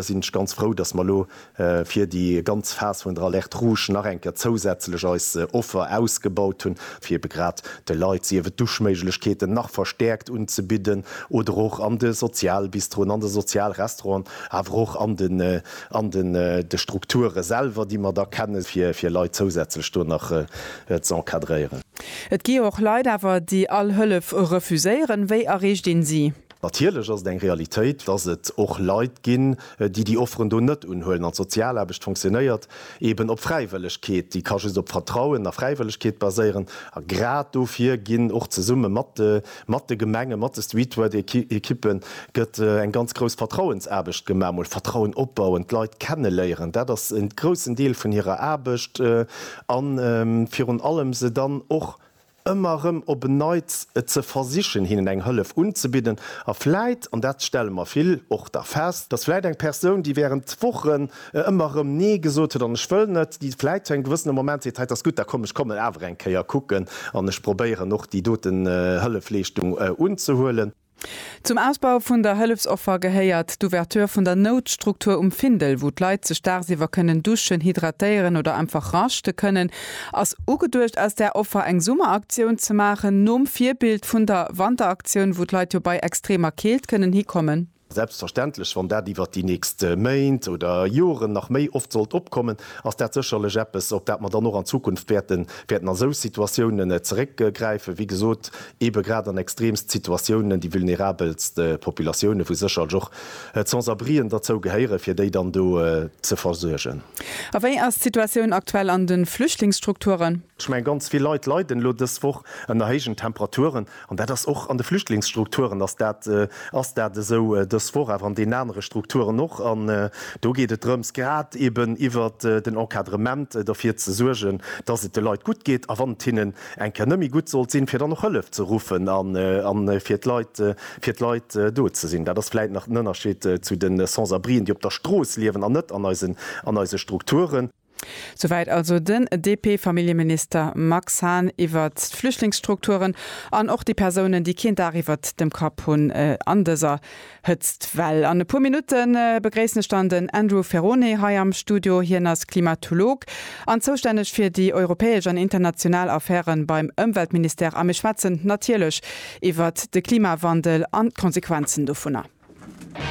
sinn ech ganz frou, dass mer elo fir déi ganz Phas vun der Alerte rouge nach eng Kéier zousätzlech eis Offer ausgebaut hunn, fir ebe grad de Leit sief et Duschméiglechkeeten nach verstärkt unzebidden oder och an de Sozialbistroen, an de Sozialrestauranten, awer och an den an den de Strukture selwer, déi mer da kennen, fir fir Leit zousätzlech do nach z'encadréieren. Et gi jo och Leit awer, déi all Hëllef refuséieren. Wéi erreecht een si? Natierlech ass et eng Realitéit, dass et och Leit ginn, déi déi Offeren do net unhuelen. An d'Sozialaarbecht funktionéiert eeben op Fräiwëllegkeet, déi ka just op Vertrauen a Fräiwëllegkeet baséieren. A grad dofir ginn och zesumme mat de Gemengen, mat de Streetwork-Ekippen gëtt eng ganz grouss Vertrauensaarbecht gemaach. Emol Vertrauen opbauen, d'Leit kenneléieren, dat ass en groussen Deel vun hirer Aarbecht. A virun allem se dann och ëmmer erëm op en Neits ze versichen, hinnen eng Hëllef unzebidden a vläit, an dat stelle mer vill och da fest, dass vläit eng Persoun, déi während Wochen ëmmer erëm Nee gesot huet an Ech wëll net, déi vläit zu engem gewëssene Moment seet, Hei, 't ass gutt, da komm, ech kommen awer eng Kéier kucken an ech probéieren och déi doten Hëllefleeschtung unzehuelen. Zum Ausbau vun der Hëllefsoffer gehéiert d'Ouverture vun der Noutstruktur um Findel, wou d'Leit sech daagsiwwer kënnen duschen, hydratéieren oder einfach raschte kënnen. Ass ugeduecht aus där Offer eng Summeraktioun ze maachen, nom Virbild vun der Wanteraktioun, wou d'Leit jo bei extremer Keelt kënnen hikommen? Selbstverständlech, wann dat iwwert déi nächst Méint oder Joren nach méi oft sollt opkommen, ass dat sécherlech eppes, op dat mer dann och an Zukunft wäerten a sou Situatiounen zeréckgräifen. Wéi gesot, Eebe grad an extreemst Situatiounen, déi vulnerabelst Populatiounen, wou sécherlech och d'Sans-abrien derzou gehéieren, fir déi dann do ze versuergen. A wéi ass d'Situatioun aktuell an de Flüchtlingsstrukturen? Ech mengen, ganz vill Leit leiden elo dës Woch ënner héijen Temperaturen. An dat ass och an de Flüchtlingsstrukturen ass dat ass dat esou dës Woch, awer an deenen anere Strukturen och. An do geet et drëms, grad eeben iwwert den Encadrement, derfir ze suergen, dass et de Leit gutt geet a wann et hinnen eng Kéier net méi gutt sollt sinn, fir dann och Hëllef ze ruffen a fir d'Leit, fir d'Leit do ze sinn. Dat ass vläicht nach den Ënnerscheed zu de Sans-abrien, déi op der Strooss liewen an net an eisen, an eise Strukturen. Souwäit also den DP-Familljeminister Max Hahn iwwert d'Flüchtlingsstrukturen an och déi Persounen, déi keen Dag iwwert dem Kapp hunn an dëser Hëtztwell. An e puer Minutte begréissen ech dann den Andrew Ferrone hei am Studio. Hien ass Klimatolog an zoustänneg fir déi europäesch an international Affäre beim Ëmweltministère. A mir schwätzen natierlech iwwert de Klimawandel an d'Konsequenzen dovunner.